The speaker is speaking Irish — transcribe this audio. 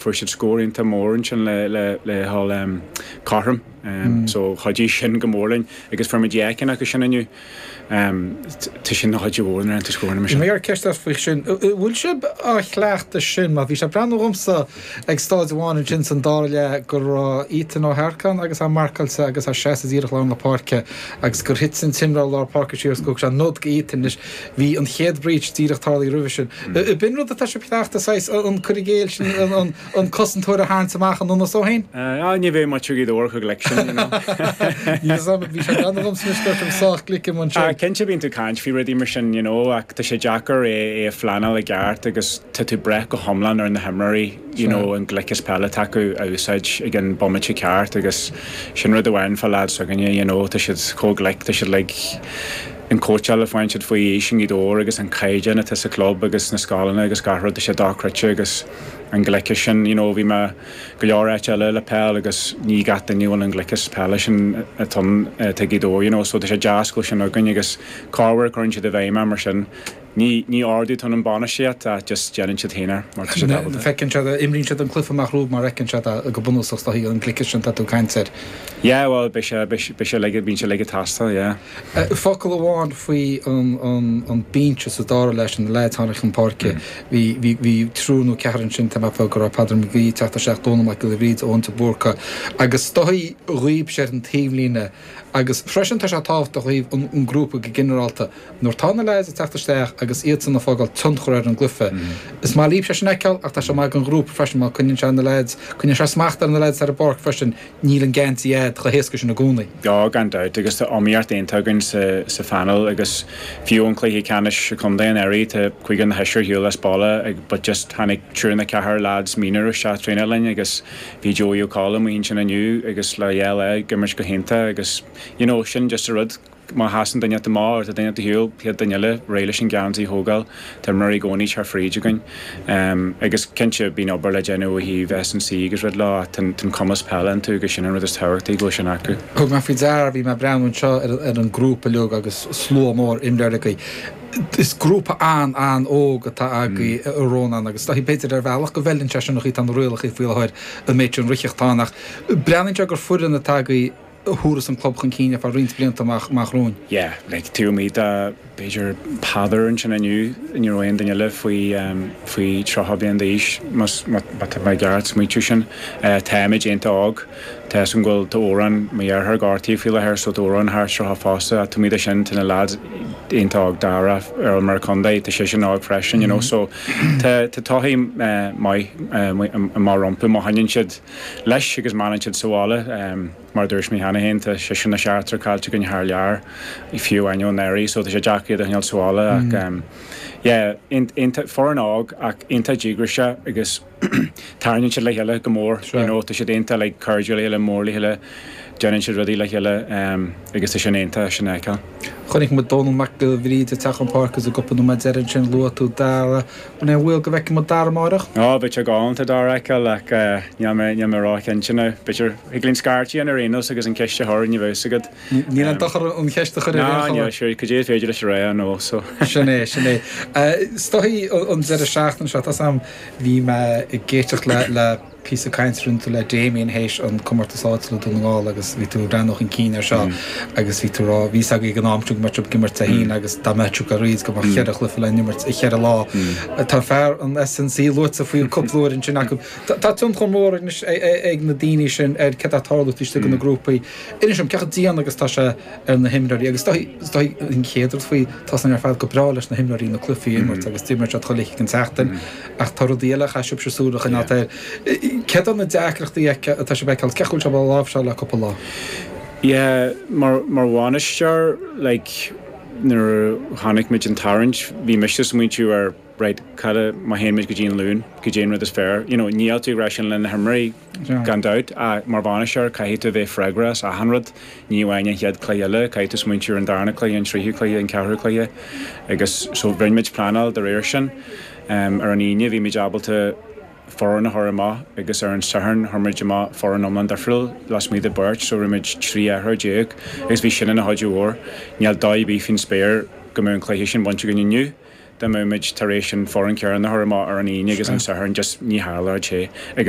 fuair siad scór iontach mór ansin le dhul cothrom so chuidigh sin go mór linn agus fuair muid dhá cheann acu sin inniu, tá sin ina chuidiú mhór an raonta scóranna mar sin. Bhí mé ag iarraidh ceist a chur faoi sin, bhfuil sibh á chleachtadh sin mar bhí sé ag breathnú dhomsa ag stáid amháin ansin san dara leath go raibh Ethan Ó hEarcáin agus é marcáilte agus é seasta díreach i lár na páirce agus gur thit an t-imreoir lár páirce siar agus gur thug sé nod do Ethan. bhí an chéad breach díreach tarlaithe roimhe sin. B'in rud atá sibh ag cleachtadh, saghas, an cur i gcéill sin, an cosantóir a tharraingt amach an ionas ó shin? Á, ní bheadh muid, déarfainn, chomh glic sin, you know. Ní raibh mé, bhí sé gan agamsa anois go raibh sibh sách glic i mbun sin. Á, cinnte bíonn tú ag caint faoi rudaí mar sin, you know, ach tá sé deacair é a phleanáil i gceart agus tá tú ag brath go hiomlán ar na himreoirí, you know, an gliceas peile atá acu a úsáid ag an bhomaite ceart agus sin rud amháin fá leaids s'againne, you know, tá siad chomh glic, tá siad like, an cóitseáil a fhaigheann siad faoi aois i nGaoth Dobhair agus an caighdeán atá sa chlub agus sna scoileanna agus gach rud, tá sé dochreidte agus an gliceas sin, you know bhí mé go leor áit eile le peil agus ní gach duine a bhfuil an gliceas peile sin acu atá i nGaoth Dobhair you know so tá sé deas go bhfuil sin againn agus corruair cuireann siad i bhfeidhm é mar sin. Ní ordú atá ann ón bhainistíocht ach just déanann siad féin é mar tá siad ábalta. Feiceann siad é, imríonn siad an cluife amach rompu mar fheiceann siad é go bunúsach is dóichí, an gliceas sin atá tú ag caint air. Yeah, bhuel, beidh sé, beidh sé like, bíonn sé like tástáil, yeah. Focal amháin faoi an binse sa dara leath sin, na leaids tháinig chun páirce, bhí, bhí, bhí triúr nó ceathrar ansin, tá mé ag ceapadh go raibh Peadar McGee ag teacht isteach, Dónal Mac Giolla Bhríde, Eoin de Búrca agus is dóichí, dhaoibhse ar an taobhlíne, Agus freisin tá sé tábhachtach ó thaobh an ghrúpa go ginearálta, nuair atá na leaids ag teacht isteach agus iadsan ag fágáil tionchar ar an gcluife. Is maith libhse sin a fheiceáil ach tá sé maith ag an ghrúpa freisin mar coinníonn sé na leaids, coinníonn sé smacht ar na leaids ar an bpáirc freisin, níl an geansaí a'ad chomh héasca sin i gcónaí. Á, gan dabht agus tá iomaíocht iontach againn sa phaineal agus fiú ón chluiche ceannais contae anuraidh tá cúigear nó seisear ar shiúl as baile but just tháinig triúr nó ceathrar leaids mionúr isteach ag traenáil linn agus bhí Joey Ó Colm ansin inniu agus leaid eile ag imirt go hiontach agus you know sin just a rud má sheasann duine inteacht amach má tá duine inteacht ar shiúl chéad duine eile réidh leis an geansaí a thógáil tá imreoirí i gcónaí ag teacht fríd againn ehm agus cinnte bíonn obair le déanamh ó thaobh S and C agus rud leo ach tá an cumas peile iontu agus sin an rud is tábhachtaí go bhfuil sin acu. Thug mé faoi deara, bhí mé ag breathnú anseo ar an grúpa uilig agus slua mór imreoirí agaibh. Is grúpa an, an óg atá agaí a Rónáin, agus is dóichí b'fhéidir ar bhealach go bhfeileann sé seo an chaoi atá na rialacha faoi láthair an méid sin rith ag teastáil ach breathnaíonn sé gur foireann atá agaí a thabharfas an club chun cinn ar feadh roinnt blianta amach, amach romhainn. Yeah, like taobh amuigh de b'fhéidir Peadar ansin inniu, ní raibh aon duine eile faoi, faoi tríocha bliain d'aois, más, má tá mé ag iarraidh smaointiú sin. Tá muid iontach óg. Tá's agat bhfuil, tá Odhrán, mo dheartháir gortaithe faoi láthair so tá Odhrán gortaithe fosta ach taobh amuigh de sin tá na lads iontach óg, Dara ar ais mar contae tá seisean an-óg freisin you know so tá tá todhchaí maith maith rompu má choinníonn siad leis agus má fhanann siad sa bhaile mar dúirt mé cheana féin tá seisear nó seachtar caillte againn thar lear fiú amháin anuraidh so tá sé deacair iad a choinneáil sa bhaile ach yeah aon aon foireann óg ach iontach díograiseach agus tarraingíonn siad le chéile go mór, you know, tá siad aontaithe, like cairdiúil le chéile, mór le chéile, déanann siad rudaí le chéile agus tá sé iontach deas sin a fheiceáil. Chonaic muid Dónall Mac Giolla Bhríde ag teacht chun páirce sa gcupla nóiméad deiridh ansin, luaigh tú Dara, an é an baol go bhfeicfidh muid Dara amárach? Á, bheadh sé galánta Dara a fheiceáil ach níl mé, níl mé róchinnte now, b'fhéidir, thig linn scairt a dhéanamh ar aon nós agus an ceist a chur, ní bheidh fhios agat. Níl aon dochar an cheist a chur ar aon chuma. Ná, níl, sure, cad é is féidir leis a rá, you know, so. Sin é, sin é. Stiofáin, an deireadh seachtaine seo, tá 's a'm. Bhí mé ag éisteacht le píosa cainte a rinne tú le Damien théis an comórtas áitiúil i Dún na nGall agus bhí tú ag breathnú chun cinn air seo agus bhí tú ag rá, bhí a fhios agaibh ag an am sin go mbeadh sibh ag imirt Dé hAoine agus dá mbeadh sibh ag rá go mbeadh cheithre chluiche le n-imirt i cheithre lá. Tá fear an S&C luaite faoi cúpla uair ansin agat. Tá tionchar mór anois ag na daoine sin ar cad tá ag tarlú istigh sna grúpaí. Inis dom, cé chomh dian agus tá sé? ar na himreoirí agus is dóichí an chéad rud faoi, tá san ar fad go breá leis na himreoirí na cluichí a imirt agus d'imir siad chuile lá den tseachtain ach tá rudaí eile a chaithfidh sibhse súil a choinneáilt air. Céard iad na deacrachtaí atá sibh a fheiceáil, cé go bhfuil sibh á láimhseáil le cúpla lá? Yeah, mar, mar bhainisteoir, like, nuair a chonaic muid an tarraingt, bhí mise ag smaointiú ar, right, cad a, má théann muid go dtí an Luan, cad é an rud is fearr, you know, níl tú ag rá sin le na himreoirí, Gan dabht, ach mar bhainisteoir, caithfidh tú bheith freagrach as achan rud, ní amháin an chéad cluiche eile, caithfidh tú smaointiú ar an darna cluiche, an tríú cluiche, an ceathrú cluiche agus so rinne muid pleanáil de réir sin. Ar an Aoine bhí muid ábalta foireann a chur amach agus ar an Satharn chuir muid amach foireann iomlán difriúil lasmuigh de beirt so rinne muid 13 athrú agus bhí sin ina chuidiú mhór. Níl dabht ar bith faoin spéir go mbeadh an cluiche sin bainte againn inniu dá mbeadh muid tar éis an foireann céanna a chur amach ar an Aoine agus an Satharn just ní tharlódh sé agus